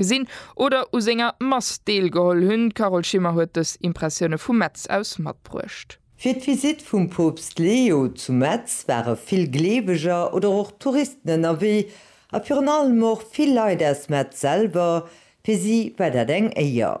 gesinn oder u senger Mass deelgeholl hunn. D'Carole Schimmer huet dës Impressioune vu Metz aus matbruecht. Fir d'Visitt vum Poopst Leo zu Metz ware vill Gleeweger oder och Touristen ënnerwee a virun allem och vill Leit aus Metz selwer. Fir si war dat eng Éier.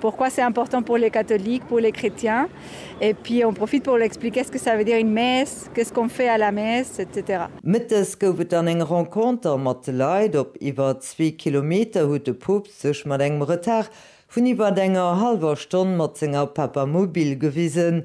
Pourquoi c'est important pour les catholiques, pour les chrétiens et puis on profite pour l'expliquer ce que ça veut dire une messe, qu'est-ce qu'on fait à la messe, etc. Mëttes gouf et dann eng Renconter mat de Leit. Op iwwer zwee Kilometer huet de Poopst sech mat engem Retard vun iwwert enger hallwer Stonn mat senger Papamobil gewisen.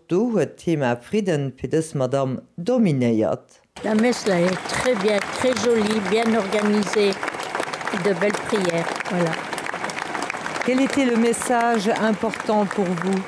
Do huet d'Thema Fridden fir dës Madamm dominéiert. Mme Messler, Très bien, très joli, bien organisé, de belle prière. Voilà. Quel était le message important pour vous?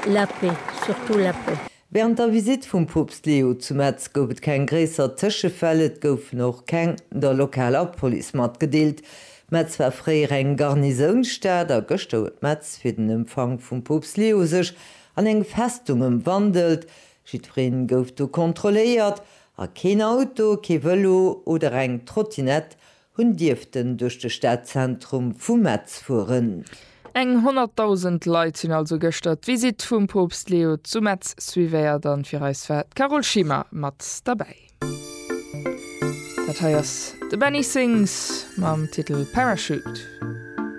La paix, surtout la paix. Während der Visite vum Poopst Leo zu Metz gouf et keng gréisser Tëschefäll, et goufen och keng der lokaler Police matgedeelt. Metz war fréier eng Garnisounstad a gëschter huet Metz fir den Empfang vum Poopst Leo sech An eng Festung ëmwandelt. Jiddwereen gouf do kontrolléiert a keen Auto, kee Vëlo oder eng Trottinett hunn dierften duerch de Stadzentrum vu Metz fueren. Eng 100.000 Leit hunn also gëschter d'Visitt vum Poopst Leo zu Metz suivéiert an fir eis war d'Carole Schimmer mat derbäi. Dat hei ass de Benny Sings mam Titel Parachute.